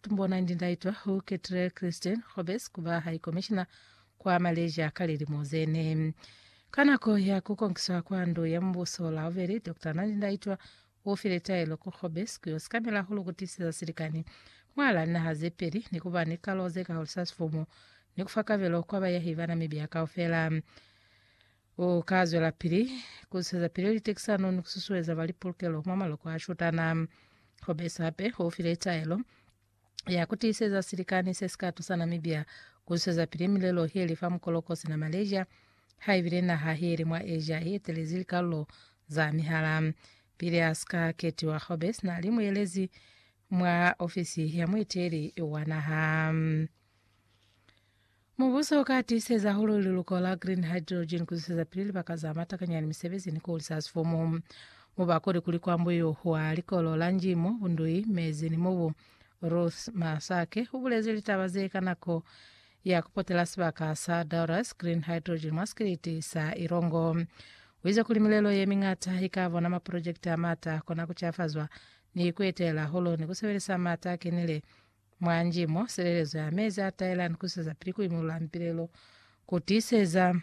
Bona ndi ndaitwa hu Kettler Christian Hobbes kuba High Commissioner kwa Malaysia ka lilimo zene. Ka nako ya kukonkiswa kwa ndu ya mubuso laubeli, Doctor Nandi Ndaitwa ufile taelo ku Hobbes kuyo sikamela hulu kutiseza silikani mwala naha zepeli ni kuba ni kalo zekahuliswa sifumu ni kufa kabelo kwa bayahi ba Namibia kaufela. U ka zwelapili ku sizapili litekisano ni ku susueza ba li pulukelo mwa maloko a shutana. Ho besi hape u file taelo ya ku tiiseza silikani se si ka tusa Namibia ku susuezapili milelo ye li fa mukoloko sina Malaysia haibile naha ye li mwa Asia i etelezi likalulo za mihala. Pili a si ka ketiwa, Hobbes na li muelezi mwa ofisi ya mueteli wa naha. Mubuso u ka tiiseza hahulu liluko la green hydrogen ku zwezeza pili libaka za matakanya ni misebezi ni ku hulisa sifumu. Mu ba kuli kuli kwa mbuyu wa likolo la Njimo, bundui, mezi ni mubu, Ruth Masake u bulezi litaba ze ka nako ya ku potela sibaka sa Doris Green Hydrogen mwa sikiliti sa Ilongo. U ize kuli milelo ye miñata i ka bona maprojekiti a mata kona ku cafazwa ni ku etela hulu ni ku sebelisa mata a kenile Mwa nji mo, silelezo ya mezi a taela ni kuiseza pili ku imulula mipilelo, ku tiiseza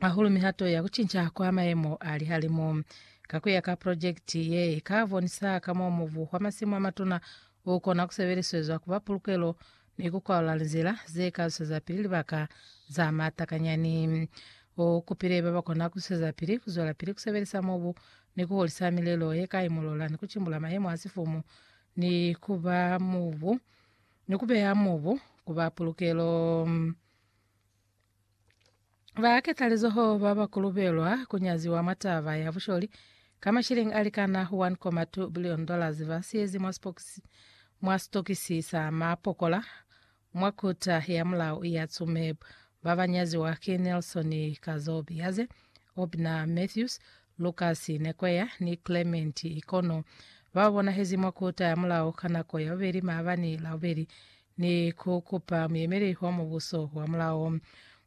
hahulu mihato ya ku cinca kwa mayemo a lihalimu. Ka kuya ka projekiti ye, ika bonisa ka mo mubu wa masimu a matuna u kona ku sebeliswezwa kuba pulukelo ni ku kwalula linzila ze ka zuseza pili libaka za matakanyani. U kupile ba ba kona ku zuseza pili ku zwelapili ku sebelisa mubu ni ku hulisa milelo ye ka imulula ni ku cimbula mayemo a sifumu ni ku ba mubu, ni ku beha mubu ku ba pulukelo. Ba ketalizoho ba ba kulubelwa ku nyaziwa mwa taba ya busholi ka mashilingi a likana 1.2 bilioni dollars ba siyezi mwa sipokisi mwa sitokisi sa mapokola Mwa kota ya mulao ya Tsumeb, ba ba nyaziwa ki Nelson Kazobi Yaze, Obna Mathews, Lucas Nekoya ni Clement Ikono ba bonahezi mwa kota ya mulao ka nako ya bubeli maabani labubeli ni ku kupa muyemeli wa mubuso wa mulao.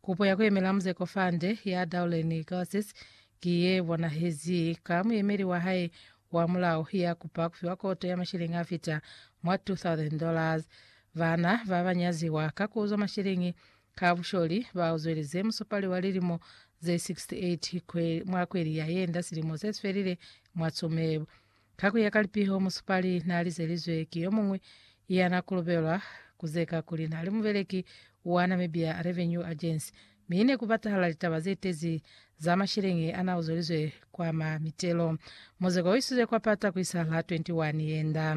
Kupo ya ku yemela Muzeko Fande ya Daulen Glasses ki ye bonahezi ka muyemeli wa hae wa mulao ya kupa ku fiwa koto ya mashilingi a fita mwa 2,000 dollars. Bana ba ba nyaziwa ka ku uzwa masheleñi ka busholi ba uzwelize musupali wa lilimo ze 68 kwe, mwa kweli ya yenda silimo se si felile mwa Tsumeb. Ka ku ya ka lipiho, musupali na lizelizwe ki yo muñwi ya na kolobelwa ku zeka kuli na li mubeleki wa Namibia Revenue Agency, mi ne ku batahala litaba ze tezi za masheleñi a na uzwelizwe kwa ma mitelo. Muzeko u isizwe kwa pata ku isa la 21 yenda.